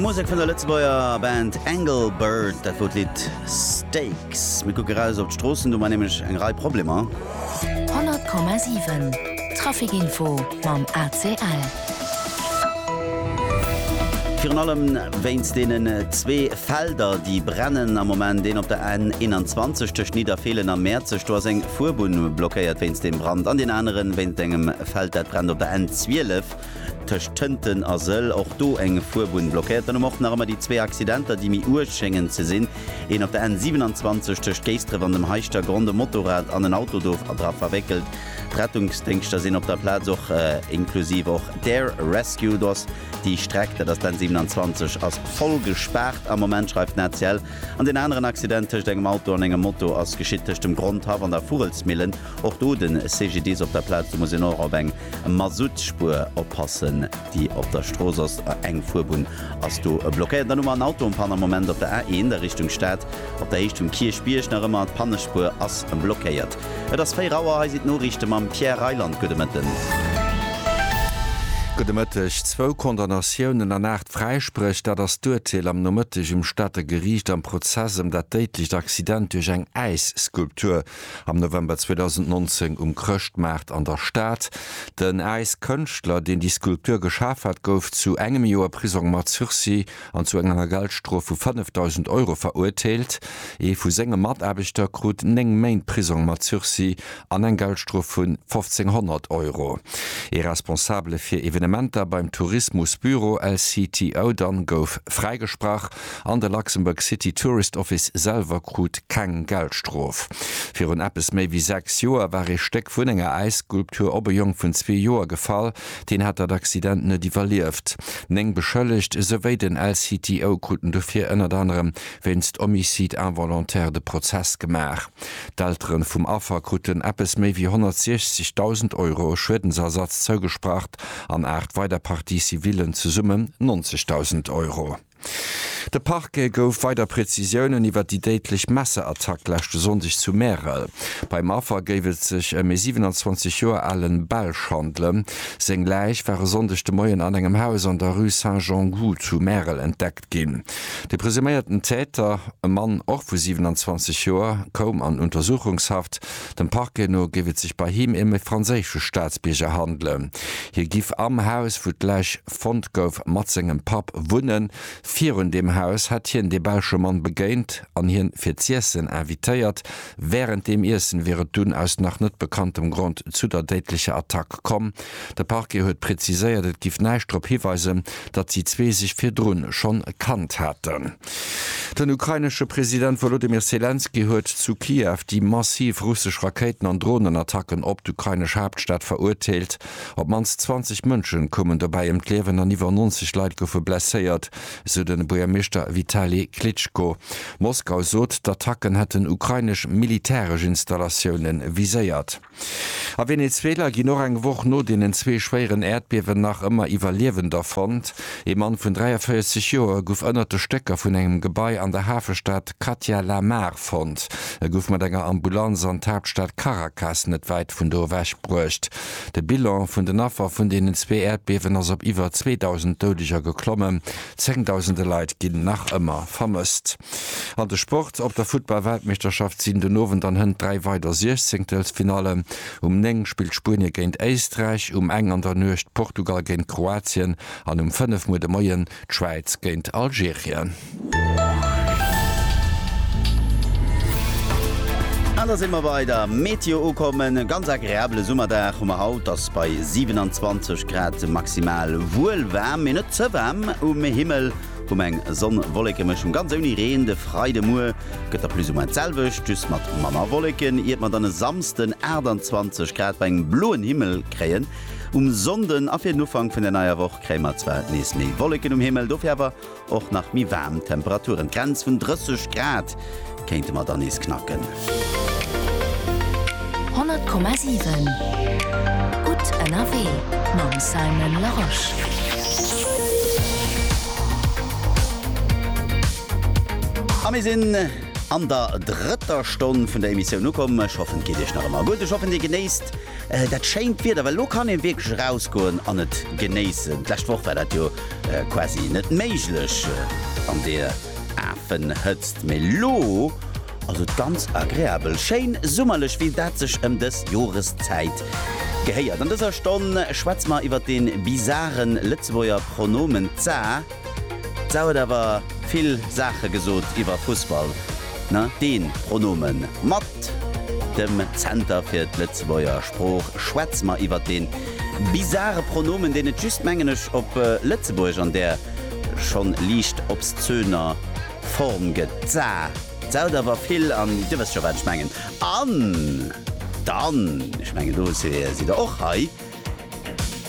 Musek vun der Lëtzebuerger Band Engelbert, dat wor d'Lidd Stakes. Mir kucke raus op d'Stroossen, do war nämlech eng Rei Problemer. 100,7 Trafikinfo mam ACL. Virun allem wéinst deenen zwee Felder, déi brennen am Moment, deen op der N21 tëscht Nidderfeelen a Mäerzeg, do ass eng Fuerbunn blockéiert wéinst deem Brand, an deen aneren wéinst engem Feld, dat brennt op der N12. Tëscht Tënten a Sëll, och do eng Fuerbunn blockéiert. Dann hu mer och nach ëmmer déi zwee Accidenter, déi méi uerg schéngen ze sinn. Een op der N 27 tëscht Géisdref an dem Heischtergronn, de Motorrad an en Auto do dra verwéckelt. D'Rettungsdéngschter sinn op der Plaz, och inklusiv och d'Air Rescue. Do ass déi Streck, dat ass d'N 27, ass voll gespaart am Moment, schreift d'ACL. An deen aneren Accident tëscht engem Auto an engem Moto ass geschitt tëscht dem Grondhaff an der Vugelsmillen. Och do de CGDIS op der Plaz. Do muss een och op eng Mazoutspur oppassen déi op der Strooss ass, eng Fuerbunn ass do blockéiert. Dann hu mer en Auto en panne am Moment op der A1 a Richtung Stad op der Héicht vum Kierchbierg nach ëmmer, d'Pannespuer ass blockéiert. Et ass 4 Auer, hei sinn d'Noriichte mam Pierre Reyland. Gudde Mëtten. Gudde Mëtteg. Zwou Condamnatiounen an 8 Fräispréch, dat ass d'Urteel am Nomëtteg um Stater Geriicht am Prozess ëm dat déidlecht Accident duerch eng Äisskulptur. Am November 2019 um Chrëschtmaart an der Stad. Den Äiskënschtler, deen déi Skulptur geschaf hat, gouf zu engem Joer Prisong mat Sursis an zu enger Geldstrof vu 5.000 Euro verurteelt. Ee vu senge Mataarbechter krut néng Méint Prisong mat Sursis an eng Geldstrof vun 1.500 Euro. Ee Responsabele fir Evenementer beim Tourismusbüro LCTO dann gouf fräigesprach. an de Luxembourg City Tourist Office selwer krut keng Geldstrof. Virun eppes méi wéi sechs Joer war ee Stéck vun enger Äisskulptur op e Jong vun zwee Joer gefall, deen hat dat Accident net iwwerlieft. Néng Beschëllegt souwéi den LCTO kruten dofir ënnert anerem wéinst Homicide involontaire de Prozess gemaach. D'Eltere vum Affer kruten eppes méi wéi 160.000 Euro Schuedensersatz zougesprach an aacht weider Parties civillen, zesumme 90.000 Euro. De Parquet gouf weider Prezisiounen iwwer déi déidlech Messerattack leschte Sonndeg zu Märel. Beim Affer géif et sech ëm ee 27 Joer ale Belsch handelen. Seng Läich war e Sonndeg de Moien an engem Haus an der Rue Saint-Jean-Goux zu Märel entdeckt ginn. De presuméierten Täter, e Mann, och vu 27 Joer, koum an Untersuchungshaft. Dem Parquet no géif et sech bei him ëm ee franséische Staatsbierger handelen. Hie giff am Haus, wou d'Läich. fonnt gouf, mat sengem Papp wunnen. Virun deem Haus hätt hien dee belsche Mann begéint an hien fir z'iessen invitéiert. Wärend deem Iessen wier et dunn aus nach net bekanntem Grond zu der déidlecher Attack komm. De Parquet huet preziséiert, et giff näischt drop hiweisen, datt déi zwee sech virdrun schonn kannt hätten. Den ukrainesche President Wolodymyr Selenskyj huet zu Kiew déi massiv russesch Rakéiten an Dronenattacken op d'ukrainesch Haaptstad verurteelt. Op d'mannst 20 Mënschen koumen dobäi ëm d'Liewen an iwwer 90 Leit goufe blesséiert, sou de Buergermeeschter Vitali Klitschko. Moskau sot, d'Attacken hätten ukrainesch militäresch Installatioune viséiert. A Venezuela ginn och eng Woch no deenen zwee schwéieren Äerdbiewen nach ëmmer Iwwerliewender fonnt. Ee Mann vun 43 Joer gouf ënnert de Stécker vun engem Gebai an der Hafestad Katia La Mar fonnt. E gouf mat enger Ambulanz an d'Haaptstad Caracas, net wäit vun do ewech bruecht. De Bilan vun den Affer vun deenen zwee Äerdbiewen ass op iwwer 2.000 Doudeger geklommen. Zéngdausende Leit ginn nach ëmmer vermësst. An de Sport, Op der Futtball-Weltmeeschterschaft sinn den Owend an Hënt dräi weider Siechzéngtelsfinallen. Um 9 spillt Spuenie géint Éisträich, um eng an der Nuecht Portugal géint Kroatien an um fënnef muer de Moien D'Schwäiz géint Algerien. An da si mer bei der Meteo ukomm. E ganz agreabele Summerdag hu mer haut. Et ass bei 27 Grad maximal wuel waarm, mee net ze waarm. Um Himmel hu mer eng Sonn-Wollekemëschung, ganz ouni Reen. De Freidemuer gëtt da plus ou moins d'selwecht, just mat manner Wolleken, iert mer dann e Samsden 28 Grad bei engem bloen Himmel kréien. Um Sonnden a fir den Ufank vun der neier Woch kréie mer zwar nees méi Wolleken um Himmel, dofir awer och nach méi waarm Temperaturen. D'Grenz vun 30 Grad kéinte mer dann nees knacken. 100,7 Gutt ënnerwee mam Simon Larosche. A mir sinn an der drëtter Stonn vun der Emissioun ukomm. Ech hoffen, et geet Iech nach ëmmer gutt. Ech hoffen, Dir genéisst. Dat schéint Wieder, well elo kann een wierklech erausgoen an et genéissen. D'lescht Woch war dat jo quasi net méiglech an deer Afenhëtzt, mee elo ass et ganz agreabel schéin summerlech, wéi dat sech ëm dës Joreszäit gehéiert. An dëser Stonn schwätze mer iwwer dee bizaren Lëtzebuerger Pronomen za. D'Sau huet awer vill Saache gesot iwwer Fussball, ne? Deen Pronomen mat dem Zenter fir d'Lëtzebuerger Sprooch. Schwätze mer iwwer deen bizare Pronomen, deen et just, mengen ech, op Lëtzebuergesch an där schonn liicht obszöner Form gëtt. D'Sa saut awer vill an Dir wësst scho, wat ech mengen. An dann, ech mengen do sidd Der och hei.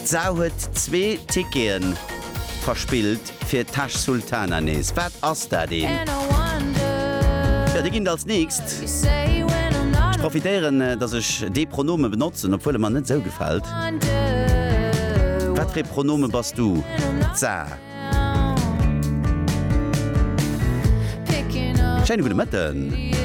D'Sau huet zwee Ticketen verspillt fir Tash Sultana nees. Wat ass dat een? Jo, déi ginn et als nächst. Ech profitéieren, dass ech dee Pronome benotzen, obwuel e mer net sou gefält. Wat fir ee Pronome bass du? D'Sa. Schéine gudde Mëtten.